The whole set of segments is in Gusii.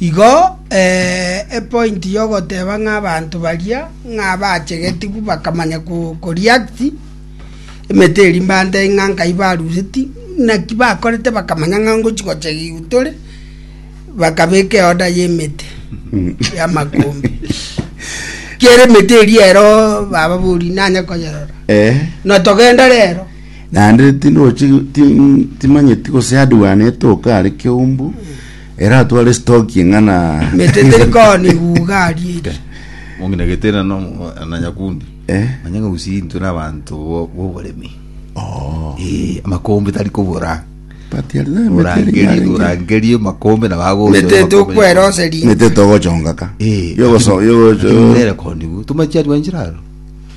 Igo epointi y'ogoteba ng'a abanto baria ng'a abachegetigwe bakamanya koreact emete eria mbantebie ng'a nkai barureti naki bakorete bakamanya ng'a ngochi gochegigwa tore bakabeka eorder y'emete y'amakumbi kera emete eria ero bababoria nanye konyerora na togenda rero naende tindwachigwa timanyeti gose hardware netoka are keumbu Ere atware stoki ng'ana. Mete teri koni ibuga aria eri. Mong'ina Getena no na Nyakundi. Eh. Manya ng'a gusii intwe na abanto bo- b'oboremi. Oh. Eh, amakombe tari kobora. But yari na emete eri Orangerie, yarenge. orangerie amakombe na bago. Mete tokwera oseri. Emete togochonga ka. Eh. Yogoso- yogo- Lakini nere koni bu. Tumachia rwanchiraro.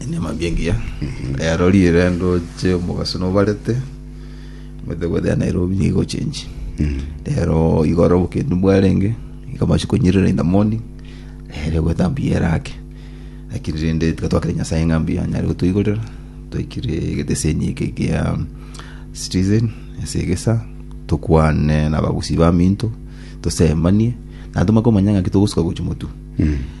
Enyamambia engiya ero riire ndoche omogaso nobarete omanyete gwetha ya Nairobi nigo igochenji rero igoro obokendu bwarenge iga amache konyirera in the morning ere gwetha mbuya ere ake lakini rende tiga twakire Nyasaye ng'a mbuya anyare gotoigorera twaikire egeteseni eke gia Citizen ase egesa tokwane na abagusii baminto tosemanie naende tomanye komanya ng'aki togosuka gochia motwe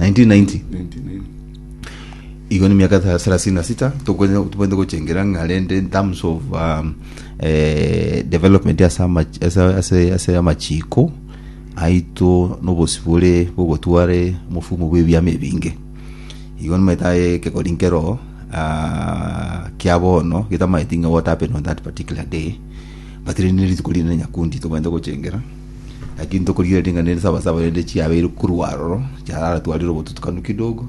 1990 igo ni miaka tha- thelathini na sita tokwene- tobwenerete gochengera ng'a rende in terms of um, eh, development ase amach- ase- ase- ase amachiko aito nobosi bore bogotware mofumo bw'ebiama ebinge igo nimaetae kegori nkero ah, kia bono getamaeti ng'a what happened on that particular day but rende rituko rinene nyakundi tobwenerete gochengera Naki ntokorigereria ring'ana rinde sabasaba rende chiabeire korwa aroro chiaratwarire obotutukanu kidogo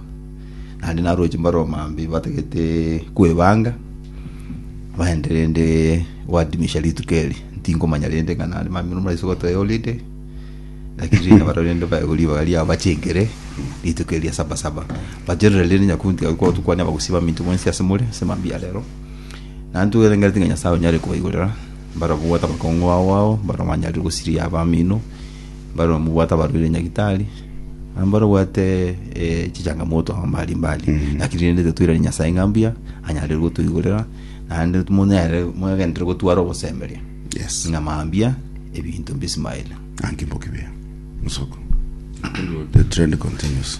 naende naroche mbaromambe batagete kwebanga baende rende gwadimisha rituko eri ntingomanya rende ng'a naende mamino murase gotoe holiday lakini rende nabaro rende baewa ribaga riabo bachengere rituko eria sabasaba baterore rende nyakungu tiga gokorwa tokwania abagusii baminto mwensi ase more ase mambia arero naende togendereti ng'a nyasaye onyare kobaigorera Barabwo bwate abakongo ao ao barabwo banyarire gosiria abamino, barabwo bwate abarwaire nyagitari, na barabwo bwate eh, chichangamoto amo mbali mbali. Mm. Lakini rende tetoirani Nyasae ng'a mbuya, anyarire gotoigorera, naende monyare mwegentere gotwara obosemberia Yes. ng'a mambia ebinto mbisimaire. Thank you Mbokibiya. Musoko. The trend continues.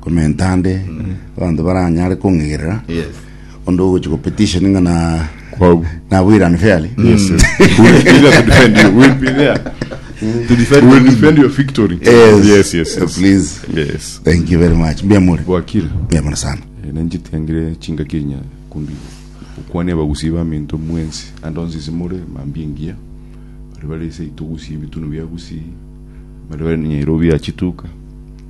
Comment ande abanto baranyare kong'igerera Yes. onde ogochia gopetition ng'a na Kwabu. nabwo Iran fairly Yes, yes. We will be there to defend you. We will be there to defend We will you. defend your victory. Yes. Yes, yes, yes. Please. Yes. thank you very much mbia muri Bwakire. mbia mono sana Eh, nanjitiangire chingaki enya kumbi okwane abagusi baminto mwensi ande onsi simore mambia engiya bari bari ase itogusi ebitunu biagusi bari bari nyairo biachituka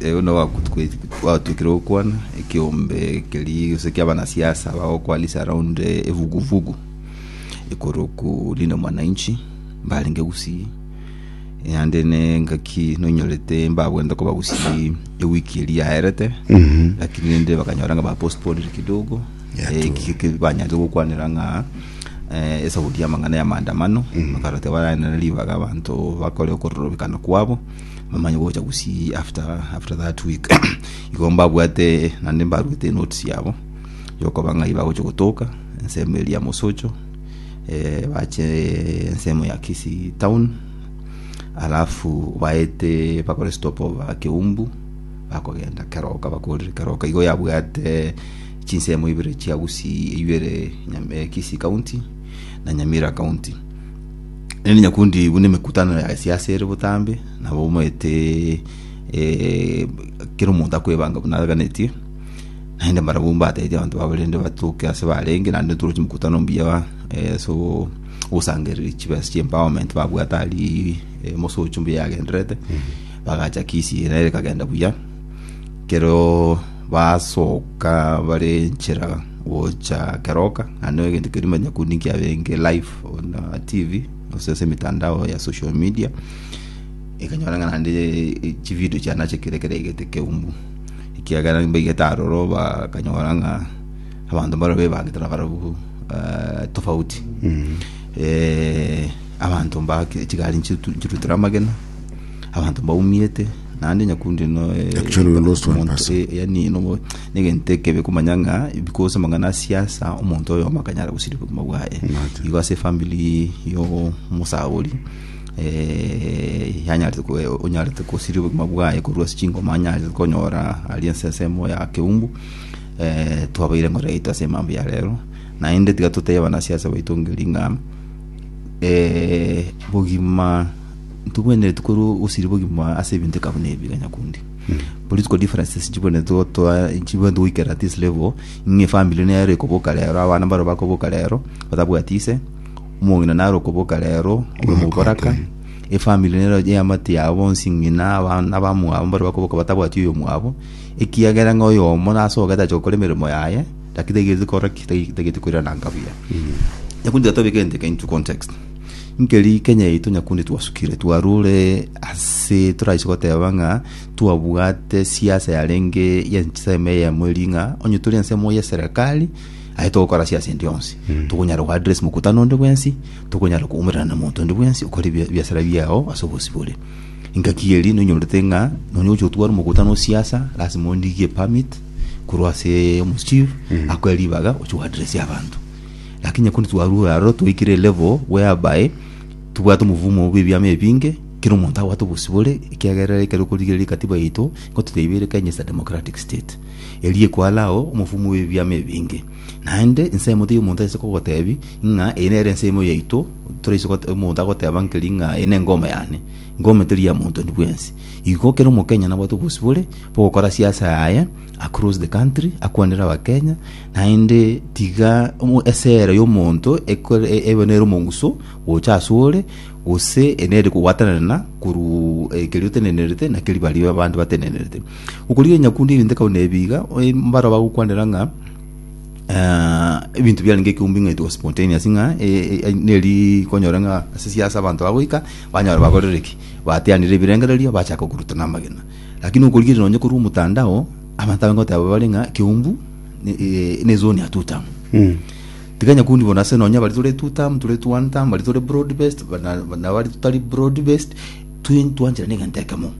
Erio nabo bagotwe- bagotwekire gokwana ekeombe keria gose kia abanasiasa bagokwanisa around eh, evuguvugu ekoro ku Linda Mwananchi mbarenge Gusii yande nengaki nonyorete mbabwente koba Gusii ewiki eria yaerete lakini rende bakanyora nga bapostponire kidogo Yeah, Eh, true. ki- ki- banyanze gokwanera ng'a eh, esauti y'amang'ana ya maandamano bakaroteba barane ribaga abanto bakore okororobekana kwabo mamanye gocha gusi after after that week igo mbabwate nande mbaruete notes yabo yokoba ng'ai bagocha gotoka ensemo eria mosocho eh, bache ensemo ya kisi town alafu baete bakore stop over keumbu bakogenda keroka bakorire keroka igo yabwate chinsemo ibere chia gusi ibere Nyam- eh, kisi county na nyamira county Erinde nyakundi buna emekutano ya gesiasa ere botambe, nabo omanyete eh, kera omonto akwebanga buna aganetie, naende mbarabwo mbatebete abanto babo rende batoke ase barenge, naende toroche emekutano mbuya eh, ase ogo- ogosangereria chibesa chia empowerment babwate aria eh, mosocho mbuya yagendererete, bagacha kisi nere ekagenda buya. Kero basoka bare enchera gocha keroka ande egento keria manya kundi nkiabenge live on uh, tv gose ase emitandao ya social media ekanyora ng'a naende eh, chivideo chiana chekire kere egete keumbu ekiagera mbaigete aroro bakanyora ng'a abanto mbaro bebangete na barabu eh, tofauti eh, abanto mbake chigari nchitu- nchirutire amagena Abanto mbaumiete naende nyakundi no eh, Actually, we lost one omonto, person. eh, yani no negento ekebe komanya ng'a because amang'ana a siasa omonto oyo makanyara gosiri obogima bwaye Imagine. igo ase efamili y'omosabori eh, yanyarete ko- onyarete kosiria obogima bwaye korwa ase chingoma anyarete konyora ari ense ensemo ya keumbu eh, twabaire ngore yaito ase emambo ya rero naende tiga totebe abanasiasa baito ngeri ng'a eh, bogima ntogwenereti korwa ogosiriba obogima ase ebinto eka buna ebi iga nyakundi political differences chibwenereti gotoa chibwenereti goikera at this level ng'a efamily nero ekoboka rero abana baro bakoboka rero batabwati ise omong'ina naro okoboka rero obe moboraka efamily nero eamate yabo bonsi ng'ina abana abamwabo mbare bakoboka batabwati oyomwabo ekiagera ng'a oyomo nase ogo tache gokora emeremo yaye naki taigereti korora ki tai- taigeti koiraranka buya nyakundi tiga tobeke egento eke into context Nkeri Kenya yaito nyakundi twasukire twarure ase toraise goteba ng'a twabwate siasa yarenge y'ensemo eyemo eri ng'a onye tore ensemo y'eserekari aye togokora siasa endi yonsi tokonyara go address mokutano onde bwensi tokonyara koumerana na monto onde bwensi okore bia- biasara biao ase obosi bore engaki eri noinyorete ng'a nonya ogocha gotwara omokutano o siasa lasima ondigie permit korwa ase omochief akoe ribaga oche go address abanto Lakini nyakundi twarue aro twaikire elevo bweabae tobwate omovumo bw'ebiama ebinge kera omonto abwate obosibore ekiagera ekero okorigereria ekatiba yaito nigo toteibire Kenya is a democratic state eria ekwara ao omovumo bw'ebiama ebinge naende ensemo teri omonto ase kogotebi ng'a eye nere ensemo yaito toraise gote- omonto agoteba nkeri ng'a eye nengoma yane ngoma teri ya monto ondi bwensi igo kera omokenya nabwate obosibore bogokora siasa yaye Across the country akwanera abakenya naende tiga omo- esera y'omonto ekore- e- ebe nere omonguso gocha ase ore gose enere kogwatanana korwa eh, keria otenenerete na keria baria abande batenenerete okorigereria nyakundi egento ekabwa nebiiga eh, mbaro bagokwanera ng'a Ah, ebinto biarenge ekeumbe ng'a etwa spontaneous ng'a eh, eh, neri konyora ng'a ase siasa abanto bagoika banyora bagorere ki bateanire ebirengererio bachaka okorutana amagena Lakini okorigereria nonye korwa omotandao, abanto abange goteba bare ng'a Keumbu ne- eh, ne zone ya two term. Mm. Tikanya kundi bono ase nonye abari tore two term, tore two one term, bari tore broad based, bana- bana bari totari broad based, twi- ntwancherane egento ekemo.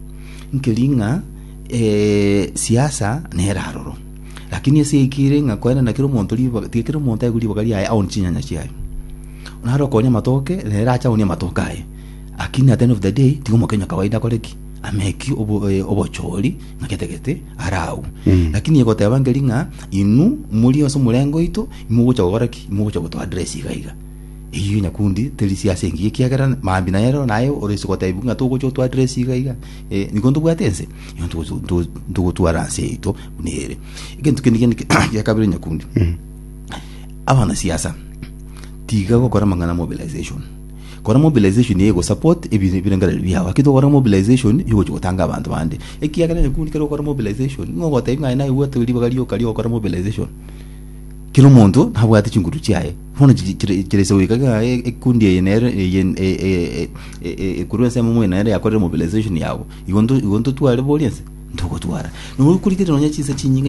Nkeri ng'a eh, siasa nere aroro. Lakini ase eki ere ng'a koenda na kera omonto ribaga, tiga kera omonto aigwe ribaga riaye aone chinyanya chiaye. Naro okonya amatoke, nere ache aonie amatoke aye. Lakini at the end of the day, tiga omokenya kawaida akore ki? ameki obo- eh, obochori ng'a gete gete are agwo lakini egoteba nkeri ng'a inwe muri ase omorengo oito imogocha gokora ki imogocha goto address iga iga eyio nyakundi teri sia ase engiya ekiagera mambi naye ero naye ore ase gotebia ng'a togocha otwa address iga iga eh, niko ntobwate ense igo ntogocha- nto- ntogotwara ense yaito buna ere egento kende kende gia kabere nyakundi abanasiasa tiga gokora amang'ana ya mobilization Kora mobilization ye gosupport ebirengererio biao. Gaki tokore mobilization yogochia gotanga abanto bande. Ekiagera nyakundi kero okore mobilization, nigo ogotebia ng'a aye naye bwate ribaga rioka ri'ogokora mobilization. Kera omonto nabwate chinkurutu chiaye. Bono chi- chire chire ase goika ng'a e- ekikundi eye nere eye n- e- e- e- e- ekorwa ense yamomo eye nere yakorire mobilization yabo. Igo nto- igo ntotware boria nse? Ntogotwara. Nabo okorigereria nonya chinsa chinyinge.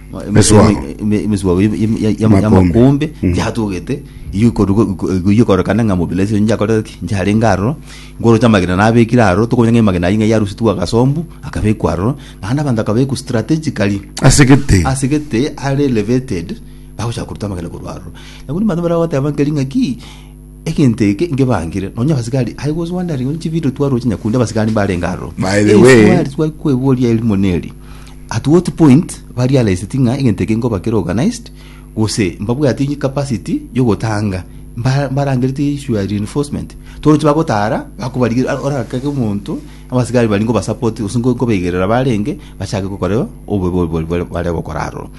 Esuago. emesuago y'amakombe Mm. yatogete igokorekana ng'a mobila ase nyakorete ki nyaringa aroro nkoroche amagena nabekire aroro tokomanya ng'a amagena ayio ng'a yarusitwe agasombu akabekwa aroro naende abanto akabekwa strategically ase gete ase gete are elevated bagocha koruta amagena korwa aroro nabo nibanto baragoteba nkeri ng'aki Egento eke ngebangire, nonya abasigari aye gose Wandering onye chividio twaroche nyakundi abasigari mbarenge aroro. By the way- Eswali twari kweboria erimo neri, at what point barealised ng'a egento eke nkoba kere organised gose mbabwati capacity yogotanga mba- mbarangerete issue ya reinforcement. Toroche bagotara bakobarigeria ah, orakake omonto abasigari baria nkobasupport gose nko- nkobaigerera barenge bachake gokora obobe obwo bare gokora aroro.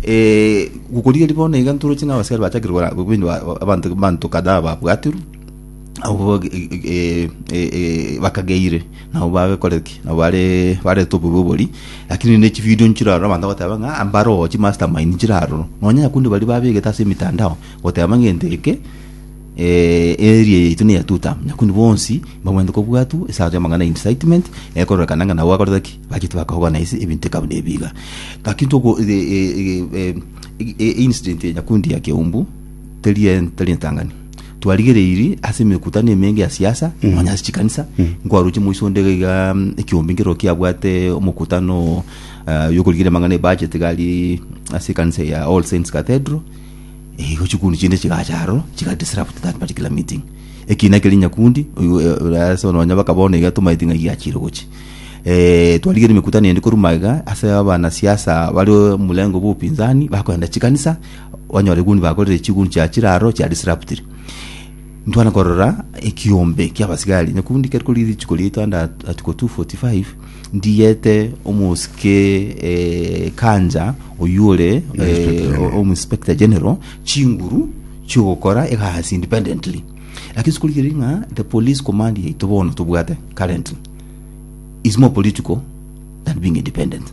Gokorigereria bono iga ntoroche ng'a abasikari bachakire gora buna abanto abanto kadhaa babwaterwe, abwo bakageire nabo bagokora ki? Nabo bare barete obobe oboria, rakini ne chividio nchire aroro abanto bagoteba ng'a mbare oo chimaster mind nchire aroro, nonye naende baria babegete ase emetandao goteba ng'a egento eke. Eria yaito ne ya two term, nyakuni bonsi mbamanyete kobwatwa esato y'amang'ana ya incitement, ekororekana ng'a nabo bakorete ki? Bachete bakogana ase ebinto ekaba nebi iga. Gaki ntoko incident ya nyakundi ya Kiaumbu teri e- teri entang'ani. Twarigereiri ase emekutano emenge ya siasa, nonya ase chikanisa, nkwaruche moiso onde iga igaa ekiombe nkero kiabwate omokutano ah, y'okorigereria amang'ana e budget iga aria ase ekanisa ya All Saints Cathedral, Igo chikuni chinde chigacha aroro chigadisrupt that particular meeting ekina keri nyakundi ase nonya baka bono iga tomaeti ng'a giachire gochi eh, twarigire emekutano ende koruma iga ase abanasiasa bari omurengo bwa upinzani bakoenda chikanisa onyora eguni bakorire chiguni chiachire aroro chia disruptire ntwana korora ekiombe kia abasigari nyakundi keri kori richiko riaito under article 245 Ndiete omosike eh, Kanja oyio ore eh, Inspector General. omu inspector general chinguru chiogokora egasi independently lakini sikorigeri ng'a the police command yaito bono tobwate currently is more political than being independent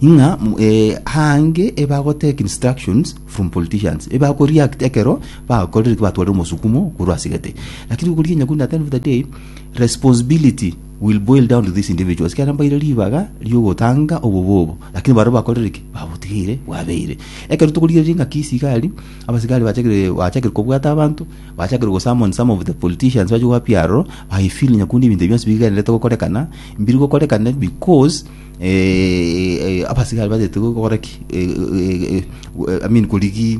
ng'a m- eh, hange ebagotake instructions from politicians ebakoreact ekero bakorire batware omosukumo korwa asegete lakini okorigia nyakundi at the end of the day responsibility will boil down to these individuals ekero mbaire ribaga riogotanga obobe obo lakini baria bakorire ki babotigeire bwabeire ekero tokorigereria engaki esigari abasigari bachakire bachakire kobwata abanto bachakire gosummon some of the politicians bache gwa piaro I feel nyakundi ebinto bionsi bigenderete gokorekana mbiri gokorekane because eh, eh, abasigari batagete gokora ki eh, eh, eh, I mean korigia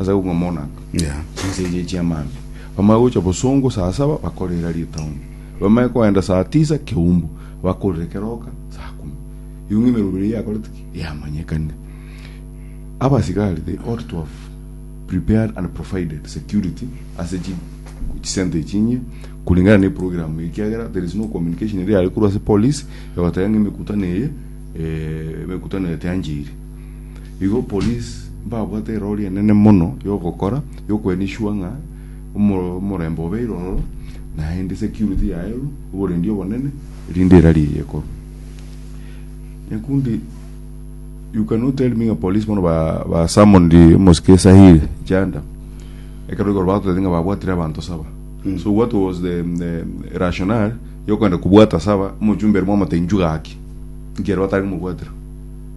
Ase kobua monaka, chinsa echi chi'amambia bamanye gocha bosongo saa saba bakorera ritauni, bamanye koenda saa tisa keumbu, bakorere keroka saa kumi. Igo ng'ina emerogo eria yakorete ki? Yamanyekanire. Abasigari they ought to have prepared and provided security ase chi chisenta echi inye kulingana na eprogram eye ekiagera there is no communication eria yare korwa ase police egoteba ng'a emekutano eye eh, emekutano eye tiancheire. Igo police mbabwate erori enene mono yogokora yokwena isua ng'a omo- omorembe obeire ororo naende security yaeru oborendi obonene erinde erari eye ekorwa nyakundi you cannot tell me ng'a police bono ba, ba summoned omosike sahili janda ekero igoro bagoteba ng'a babwatire abanto saba so what was the, the rationale yokwenda kobwata saba omochumba ere mwamoteba inchuo gaki inki ere batari komobwatera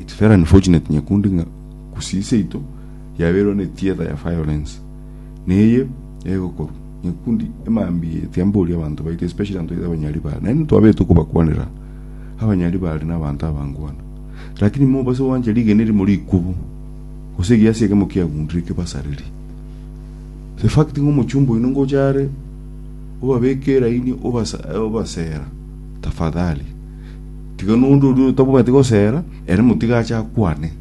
It's very unfortunate nyakundi ng'a gusii seito yabeirwe ne theatre ya violence neye egokorwa nyakundi emambia eye tiamboria abanto baito especially abanto baito abanyari bare naende twabete kobakwanera abanyari bare na abanto abangwana lakini mobase gwancha rigena erimo rikubu gose egiasi ekemo kiagundire kebasareri the fact ng'a omochumba oino ngocha are obabeke eraini obasa obasera tafadhali. Tiga nonde oria otabwati gosera, ere motiga ache akwane.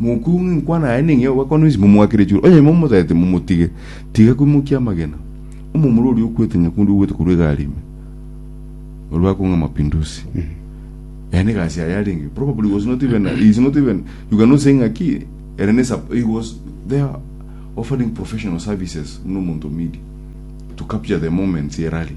Mokuyu ng'a enkwana yaye ning'e ogakwana ensi momwakire chiro. Onye momotete momotige, tiga kwimokia amagena. Omomura oria okwete nyakundi ogwete korwa egari ime. Oria bakong'a mapinduzi. Ere negasi yaye arenge. Probably he was not even, he is not even, you cannot say ng'a ki, ere ne sup- he was there offering professional services buna omonto o media to capture the moments ye rally.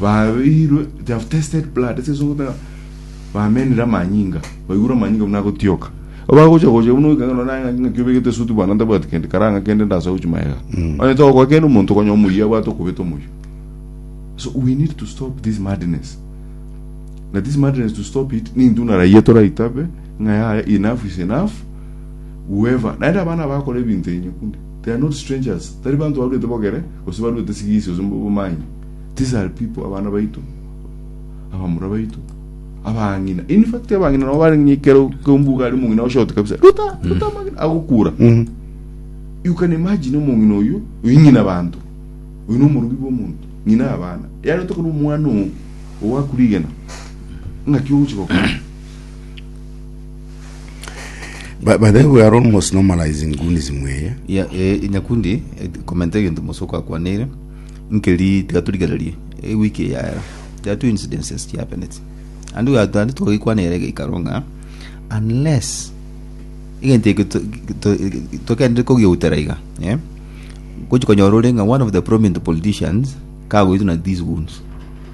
Babeirwe, they have tested blood. Ase ense ogotaka, bamenire amanyinga, baigure amanyinga buna agotioka. Obagocha gocha buna oikanga nona ng'a ng'a kiobegete suti bwana ntabwati kende kara ng'a kende ndasa gochi maega. Onye togokora kende omonto konya omuya abwate okobeta omoyo. So we need to stop this madness. Na this madness to stop it nintu narayia toraitabe ng'a yaya enough is enough whoever naende abana bakora ebinto enye kunde They are not strangers, tari banto barwete bogere, gose barwete sigisi gose bomanyi. These are people, abana baito, abamura baito, abang'ina. In fact, abang'ina nabo bare ng'ikero kembuga ari mong'ina oshoti kabisa. Ruta, ruta amagina, agokura. You can imagine omong'ina oyo, oyo ng'ina banto. Oyo nomorubi bw'omonto, ng'ina abana. Yare otokana omwana oo, owakurigena, ng'aki ogochi gokora. But, but then we are almost normalizing goonism eye. ya e, nyakundi e, komenta egento mosoko akwanire nkeri tiga torigererie e wiki eyaera there are two incidences ki happened and we are and togikwanire geikaro ng'a unless egento eke to- to- tokende kogiutera iga eh gochi konyora ore ng'a one of the prominent politicians kagoituna these wounds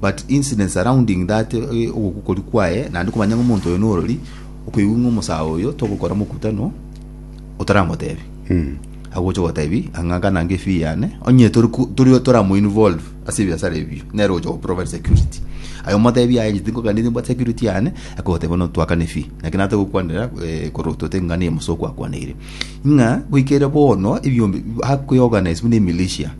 But incidents surrounding that ogokori kwaye naende komanya ng'a omonto oyo norori, okoigwa ng'a omosae oyo togokora mokutano otaramotebia. Agocha ogotebi ang'a gana nge fee yane, onye tori ku- tori toramo involve ase ebiasara ebio, nere ogocha goprovide security. Aye omotebie aye inche tinkoganeti mbwate security yane, akogotebia bono twakane fee. Naki nare togokwanera eh, koro tote ng'a niye omosa okwakwanirie. Ng'a goikera bono ebiombe bi- akwe organise buna emilitia,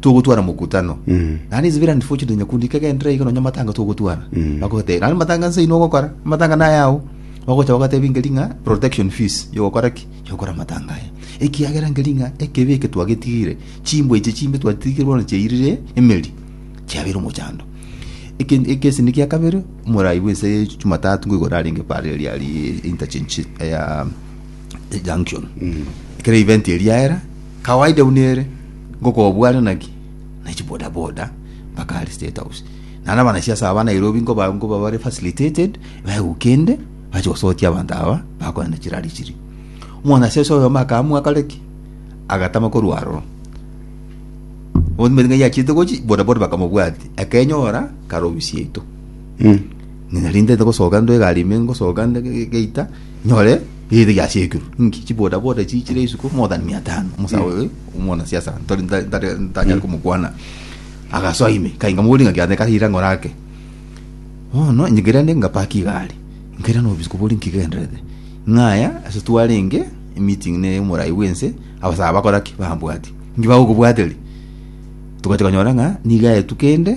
togotwara mokutano Mm. naende inse bira unfortunate nyakundi ikegenderera iga nonya matanga togotwara Mm. bakogotebi naende matanga nse inwe ogokora amatanga naye ao bagocha bagatebi ngeri ng'a protection fees yogokora ki yogokora amatanga aya ekiagera ngeri ng'a ekebe eke twagetigire chimbwa echi chimbe twatigire bono chiairire emeri chiabeire omochando Eke- ekesi niki ya kabere omorai bw'ense ya jumatatu nigo arenge pare riari interchange ya junction ekero event eri yaera kawaida buna ere ngokobware naki na chiboda boda mpaka are state house naro abanasiasa aba nairobi nkoba nkoba bare facilitated baegwa kende bache gosotia abanto aba bakorana chirari chiri omwanasiasa oyomo akaamua akore ki agatama korwa aroro ometinga yachiete gochi boda boda bakamobwatia akenyora karobi siaito Ng'a rinde togosoka intwe egari ime ngosoka nde ge- ge- geita nyore erire giasekirwe. Inki chiboda boda chiichire isiko more than mia tano. Omosae oyo omwanasiasa ntori nta- ntare- ntanyare komokwana. Agasoa ime kai nkamoboria ng'a kiagera nkaire ang'ore ake. Bono inche nkaira nde ngapaki egari. Nkairana obisiko boria inki kigendererete. Ng'aya ase twarenge emeeting ne omorai bwense abasae bakora ki? Bambwati. Inki bagokobwateri? Togachia konyora ng'a nigo aetu kende.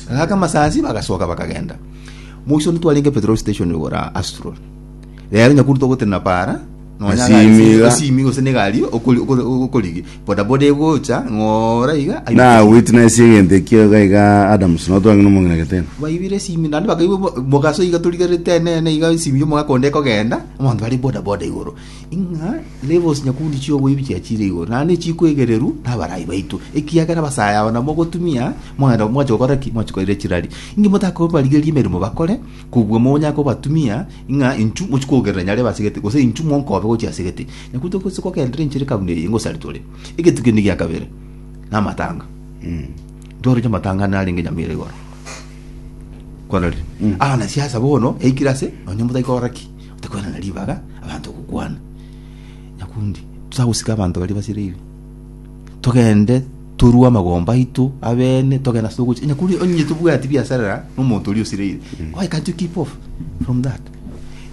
Agaka amasasi, bagasoka, bakagenda. Moisoni twarenge petrol station igora Astro. Rero nyakuru togotenena para, nonya Asimi gari ase- iga. asimi gose negari okori- okori- okorigi. Bodaboda egocha, ng'ora iga. aye- na witness egento ekio iga iga adams notwang'ina omong'ina getena baibire esimi naende bakaibwa mo- mogaso iga torigerete enene iga esimi y'omogaka onde ekogenda abanto bare bodaboda igoro Ing'a nebosie nyakundi chi'oboibi chiachire igoro, naende chikwegererwa nabarai baito, ekiagera abasae aba namogotumia mwaenda mwache gokora ki? Mwache koira chirari. Inki motakobarigeria emeremo bakore, kobua monyare kobatumia ing'a inchu mochie kogerera nyare ebasegete, gose inchu monkobe gochia ase egete. Nyakundi togose kogenderera enchera ekabuna eye inga osarete ore. Egetugi kende gia kabere, namatanga. Ntoroche amatanga ande narenge nyamera igoro. Kwarorire? Abana siasa bono yaikire ase, nonye motaikora ki? Tikogenda na ribaga abanto ogokwana, nyakundi titagosika abanto baria basireirwe, togende torue amagomba aito abene, togende ase ogocha. Nyakundi onye tobwati biasarera n'omonto oria osireire, why can't you keep off from that?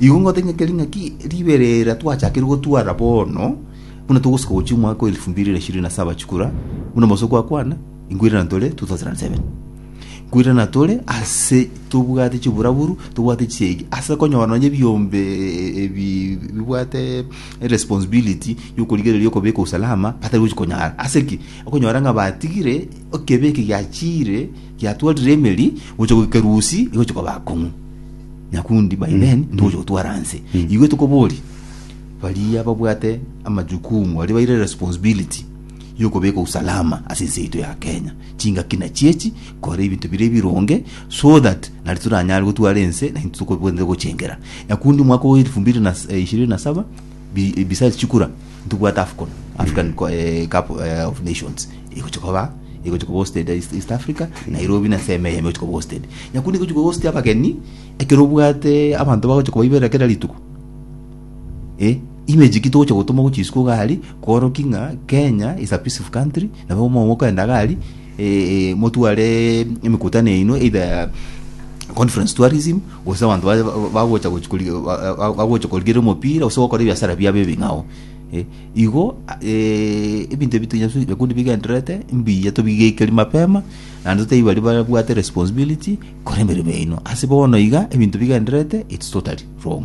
Igo ngote ng'a keri ng'aki ribera era twachakire gotwara bono, buna togosuka gochia omwaka wa elfu mbili na ishirini na saba chikura, buna Mose kwakwana, Nkwirana tore 2007 nkwirana tore ase tobwate chiburaburu tobwate chisegi ase konyora nonya ebiombe eh, ebi bibwate responsibility yokorigereria okobeka usalama batari gochi konyara ase ki okonyora ng'a batigire ekebeke giachire giatwarire emeri gocha goika rusi igochi koba akong'u nyakundi by then ntogocha gotwara nse igwe tokobori baria babwate amajukumu baria baire responsibility yokobeka usalama ase ense yaito ya Kenya, chingaki nachiechi kore ebinto biria ebironge so that nari toranyare gotwara ense naintwe tokobwenerete gochengera. Nakundi omwaka o elfu mbili na ishirini na saba bi- besides chikura ntobwate Afcon, African Co- eh, Cup eh, of Nations egochi koba egochi koba hosted East, East Africa Nairobi na seme eyemo egochi koba hosted nyakundi egochi koba host abageni ekero obwate abanto bagochi kobaiberera kera rituko Eh, image ki togocha gotoma gochia isiko iga aria, kworoki ng'a Kenya is a peaceful country, nabo mo- mokoenda iga aria, eh, eh, motware emekutano yaino either ya conference tourism, gose abanto baye ba- bagocha gochi kori- ba- ba- bagocha korigera omopira gose gokora ebiasara biabo ebing'ao. Eh, igo a- eh, ebinto ebi tonya su- bikundi bigendererete mbuya tobigeikerie mapema, naende totebi baria babwate responsibility, kora emeremo yaino. Ase bono iga, ebinto bigendererete, it's totally wrong.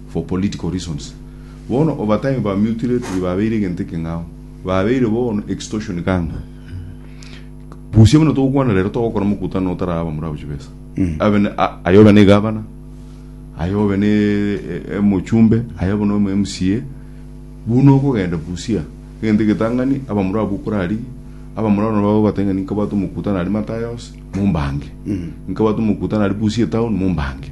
for political reasons. Bono obatime ba mutilately babeire egento ekeng'ao, babeire bono extortion kanga busia buna togokwana rero togokora mokutano otaraba murabu chibesa. Abe ne- a- aye obe ne gavana, aye obe ne e- e- mochumbe, aye obe no MCA, buna okogenda busia egento egetang'ani aba murabu okorarigia aba murabu nabo bagobatebia ng'a ninkabwate omokutano aria Matayos mombange, ninkabwate omokutano aria busia etown mombange.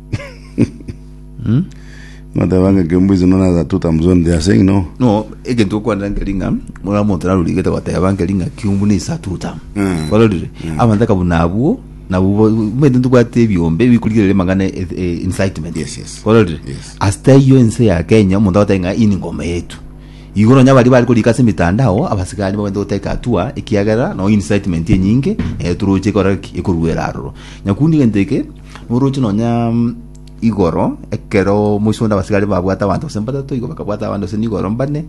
Mateba ng'a kembu is known as a tuta mzoni they are saying no. no egento okwanera nkeri ng'a muna omonto narurigete goteba nkeri ng'a kiumbu ne isatuta Mm. kwarorire abanto aka buna abwo nabo bo- omanyete ntobwate ebiombe bikorigereria amang'ana e- e- incitement Yes, yes. kwarorire Yes. asita eyio ense ya kenya omonto agotebi ng'a iyi ningoma yetu igo nonya baria bari korika ase emetandao abasigari nigo babete goteka hatua ekiagera nonye incitement enyinge eh, toroche ekora ki ekorwera aroro nyakundi egento eke Noroche nonya igoro, ekero moiso onde abasigari babwate abanto gose mbatato, igo bakabwata abande gose nigoro mbane,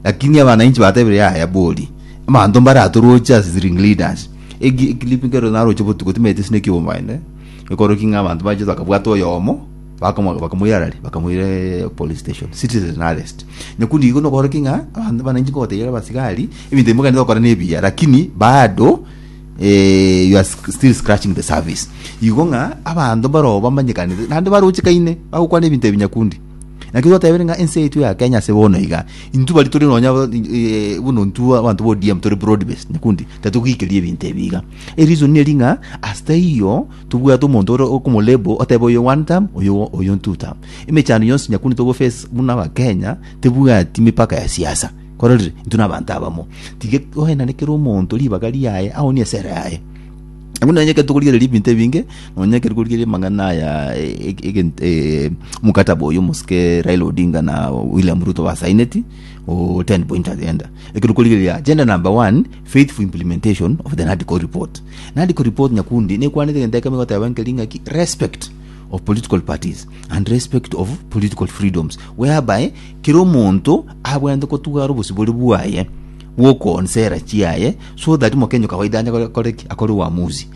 lakini abana inche batebire yaya bori, abanto mbaratoroche as the ring leaders. Eki eklipu ekero naroche botuko timaeti ase naki obomaene, ekoroki ng'a abanto bache bakabwata oyomo, bakomo bakamoira ara ri, bakamoira eeh police station, citizen arrest. Nyakundi igo nokoroki ng'a abanto abananchi nkobatebirie abasigari, ebinto ebi mogaenda gokora nebiya, lakini bado. eh, you are sc- still scratching the service igo ng'a abanto baroo bamanyekanete naende baroche kaine bagokwana ebinto ebinyakundi naki twatebire ng'a ense yaito ya kenya ase bono iga intwe bari tore nonya abo- eh, buna intwe abanto ba odm tore broad based nyakundi tatogikeria ebinto ebi iga ereason eri ng'a ase taiyo tobwate omonto ore okomolebo otebe oyo one term oyo oyo two term emechando yonsi nyakundi togoface buna abakenya tebwati mipaka ya siasa Kororire, intwe nabanto abamo. Tiga goenane kera omonto ribaga riaye, aonie esera yaye. Buna onye ekero tokorigereria ebinto ebinge, nonya ekero korigereria amang'ana aya e- e- egent- eh, mokataba oyo omosike Raila Odinga na William Ruto basaineti o 10 point agenda. Ekero korigereria agenda number one, faithful implementation of the NADCO report. NADCO report nyakundi nekwanete egento ekemo egoteba nkeri ng'aki respect of political parties and respect of political freedoms whereby Kera omonto abwenerete kotwara obosibore bwaye bw'okoonsa era chiaye, so that mokenyo kawaida anye kore- kore ki? akore uamuzi.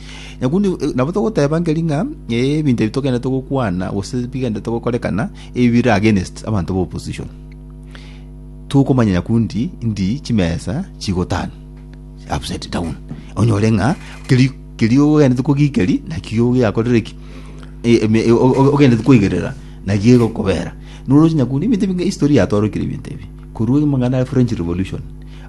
Nyaku ni- eh, nabo togoteba nkeri ng'a eh, ebinto ebi togenderete gokwana gose bigenderete gokorekana ebi bire against abanto ba opposition tokomanya nyaku ndi ndi chimesa chigotan upside down onyore ng'a keri keri ogenderete kogikeri nakio giakorire ki Eh, eme- eh, o- o- ogenderete koigerera Naki egokobera, nore oche nyakundi ebinto ebi ng'a history yatoorokeire ebinto ebi, korwa egimo ng'a nare French Revolution,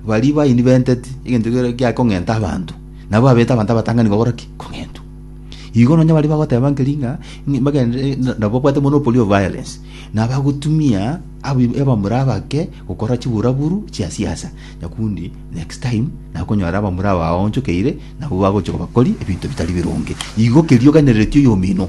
baria bainventeti egento ekero gia kong'enta abanto, nabo babete abanto abatang'ani kogora ki? Kong'entwa. Igo nonya baria bagoteba nkeri ng'a ng'i bagenderere na- nabo babwate monopoly of violence, na bagotumia abi- abamura abake gokora chiburaburu chia siasa, nyakundi next time nakonyora abamura aba baonchokeire, nabo bagochia kobakori ebinto bitari bironge. Igo keria oganerereti oyomino.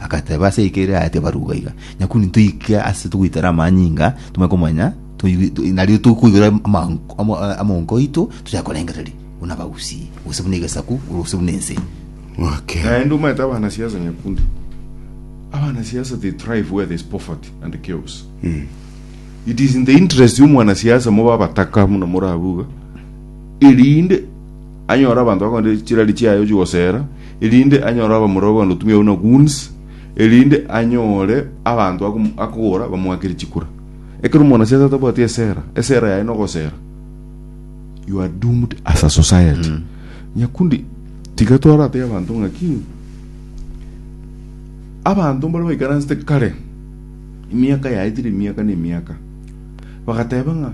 Agateba ase eika eria yaye tibaruga iga. Nyakuni toike ase togoitera amanyinga, tomanye komanya, toigwe- to- nario tokoigwera amanko- amo- eh, amonko aito, tochake korengereria buna abagusii, gose buna egesaku, gose buna ense. Okay. naende omanyete abana siasa nyakundi abana siasa they thrive where there's poverty and chaos it is in the interest yomwana siasa mobe abataka muna morabuga erinde Anyore abanto bakonde chirari chiaye gochia gosera, erinde anyore abamura bakonde gotumia buna goons, erinde anyore abanto akom- akogora bamoakere chikura. Ekero omwanasiasa atabwati esera, esera yaye nogosera, you are doomed as a society. Nyakundi, tiga twarate abanto ng'aki, abanto mbare baikaransete kare, emiaka yaetire emiaka na emiaka, bagateba ng'a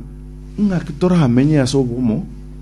ng'aki toramenye ase obomo,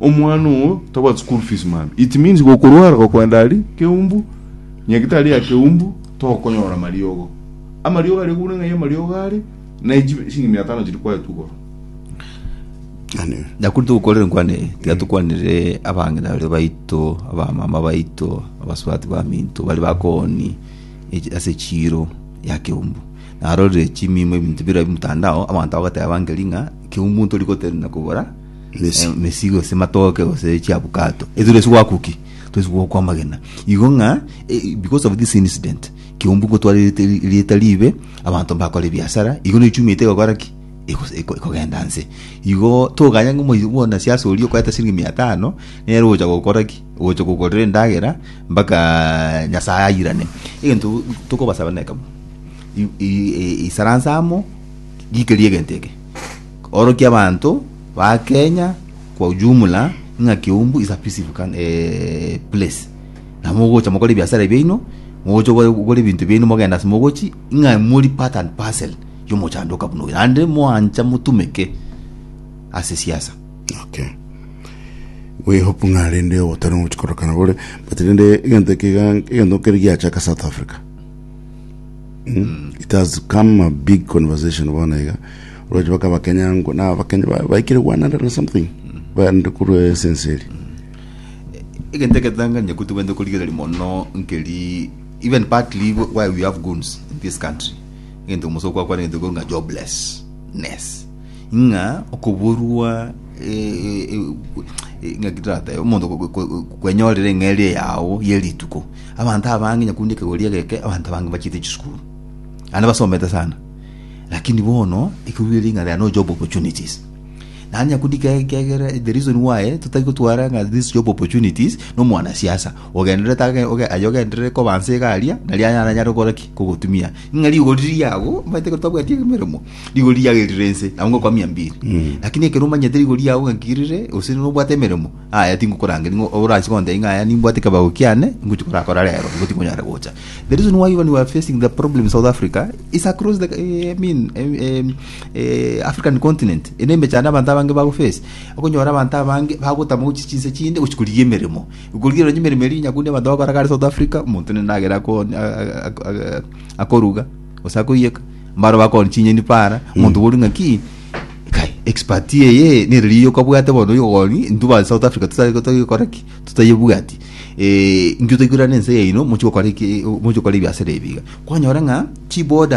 Omwana oo tagwati school fees man. It means gokorwara gokwenda ari keumbu, nyagitari ya keumbu tokonyora mariogo. Amariogo aria gobuna ng'ai amariogo are na echi shilingi mia tano chiri kwaye tugoro. Nyakuri tugukorere nkwane eye tiga tukwanire abang'ina bare baito abamama baito abasubati baminto bari bakoni echi- ase echiro ya keumbu narorire chimimo ebinto bira mtandao abanto bagateba ngeri ng'a keumbu ntori gotenena kogora Mesi. Eh, mesi gose matoke gose chiabukato ezire esi gwakuki twesi gwokwa amagena igo ng'a eh, because of this incident kiumbu ngotwara erite- rieta ribe abanto mbakora ebiasara igo nechumi ete egokora ki Ego- ego- ekogenda nse igo toganya ng'a omoy- bono siasa oria okoeta siringi mia tano nere ogocha gokora ki ogocha gokorera endagera mpaka nyasaye ayirane egento tokobasaba nekemo i- i- i- isaransa amo rikeria egento eke. Orokia abanto ba Kenya kwa ujumla ng'a Kiumbu is a peaceful coun- eh, place na mogocha mokore ebiasara biaino mogocha ogore ogore ebinto biaino mogenda ase mogochi ng'a mori part and parcel ya omochando oka buna oyo naende moancha motumeke ase siasa. Okay. We hope ng'a rende ogotari ngochi korokana bore but rende egento eke iga egento kere giachaka South Africa. Mm. It has come a big conversation bono iga Roche baka bakenya ngo na bakenya ba- baikire 100 na something baende kurwa esenseri egento egetanganye kuti bende korigereria mono nkeri even partly why we have goons in this country egento omoso kwa kwana egento nga joblessness nga okoborwa eh, eh, eh, eh, nga kitrate omonto ko- ko- ko- kwenyorera eng'eria yao ye rituko abanto abange nyakundi ekegoria geke abanto abange bachite chisukuru ande basomete sana Lakini bono ekerugire ring'ana ria no job opportunities. Nani akundika ekiagera the reason why totari gotwara ng'a this job opportunities no mwana siasa ogenderete age oge aye ogenderere kobansa iga aria nari aye aranyare gokora ki kogotumia ng'a rigori riago omanyete ekero twabwati emeremo rigori riago erire ense nabo ngokwamia mbiri lakini ekero omanyete rigori riago ng'a nkirire gose nobwate emeremo Aya tingokorangeria ng'a oranche kontebia ng'a aya nimbwate kebago kiane ngochia korakora rero igo tikonyara gocha. The reason why when we are facing the problem in South Africa is across the eh, I mean eh, eh, eh, African continent. Ene emechando abanto abange bago face. Okonyora abanto abange bagotama gochi chinse chinde gochi korigia emeremo. Korigia onye emeremo eri nyakundi abanto bakoraga are South Africa omonto nende agera ako akoruga ose akoiyeka. Mbaro bakoni chinyeni para omonto bori ng'a ki Nkai, expert eye nere riiyo kabwate bono yogoni intu ba South Africa tuta tutagikora ki tutayebwati eh inki utaigurana ense yaino mochi gokora ki mochi gokora ebiasara ebiga kwanyora ng'a chi borders